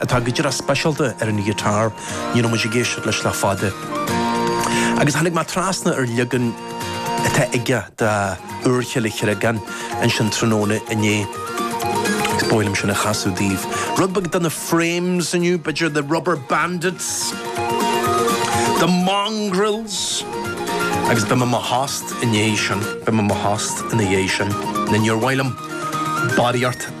atá go díreach speisialta ar an ghiotár, ní raibh muid ag éisteacht leis le fada. Agus tháinig mé trasna ar leagan atá aige de Úrchill an Chreagáin ansin tráthnóna inné. Agus ba mhaith liom sin a chasadh daoibh. Rud beag de na Frames inniu, b'fhéidir The Rubber Bandits, The Mongrels, agus beidh mé i mo thost i ndiaidh sin, beidh mé i mo thost ina dhiaidh sin. Nó níor mhaith liom barraíocht.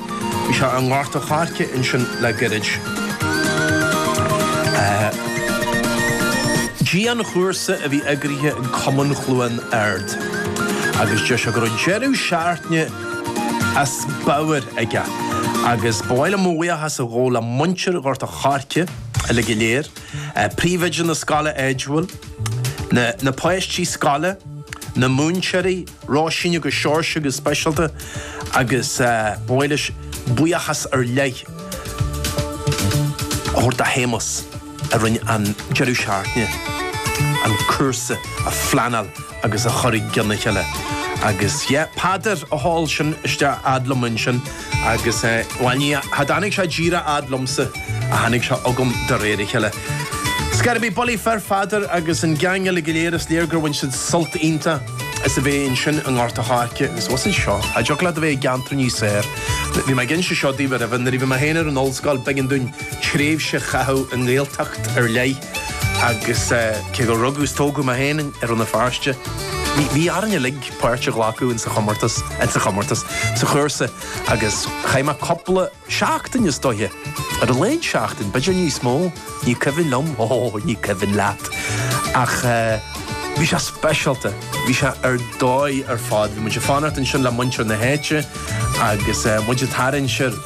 Bhí sé i nGort a' Choirce ansin le gairid. Dianchúrsa a bhí eagraithe ag Cumann Chluain Árd agus deir sé go raibh deireadh seachtaine as pabhar aige agus ba mhaith liom mo bhuíochas a ghabháil le muintir Ghort a' Choirce uilig go léir, príomhoide na scoile áitiúil, na páistí scoile, na múinteoirí. Róisín agus Seoirse go speisialta agus ba mhaith leis buíochas ar leith a thabhairt do Shéamus a rinne an deireadh seachtaine an cúrsa a phleanáil agus a chur i gcionn a chéile agus yeah Peadar a sheol sin isteach fhad liom ansin. Agus bhuel, ní, cha dtáinig sé díreach fhad liomsa, ach tháinig sé chugam de réir a chéile. Scor ar bith, bulaí fir, a Pheadair agus an geaing eile go léir, is léir gur bhain siad sult iontach as a bheith ansin i nGort a' Choirce agus abhus anseo. Cá dtiocfadh leat a bheith i gceantar níos fearr. Bhí mé ag inse seo daoibh aroimhe, nuair a bhí mé féin ar an ollscoil b'eigean dúinn tréimhse a chaitheamh i nGaeltacht ar leith agus cé gur rugadh is tógadh mé féin i Rann na Feirste, bhí orainn uilig, páirt a ghlacadh insa chomórtas, sa chúrsa agus chaith mé cúpla seachtain is dóiche, ar a laghad seachtain, b'fhéidir níos mó, ní cuimhin liom, oh, ní cuimhin leat, ach eh, bhí sé speisialta, bhí sé ar dóigh ar fad, bhí muid ag fanacht ansin le muintir na háite agus eh, muid ag tarraingt ar.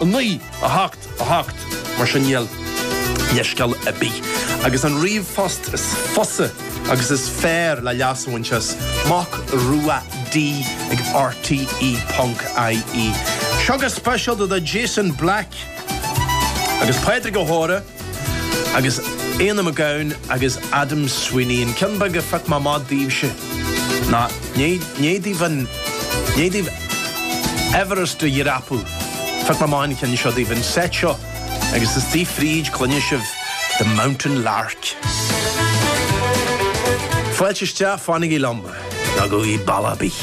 9, 8, 8, mar sin níl leithscéal ar bith agus an ríomhphost is fusa agus is fearr le leas a bhaint as, Mac Rua D ag rte ponc ie. Seo go speisialta do Jason Black agus Pádraig O'Hora. Agus Éanna McGowan agus Adam Sweeney, an ceann beag a phioc mé amach daoibhse, nó i ndiaidh daoibh an, i ndiaidh daoibh Everest a dhreapadh, phioc mé amach an ceann seo daoibh, an seit seo, agus istigh fríd cluinfidh sibh, The Mountain Lark. Fáilte isteach, fanaigí liom, ná gabhaigí bealach ar bith.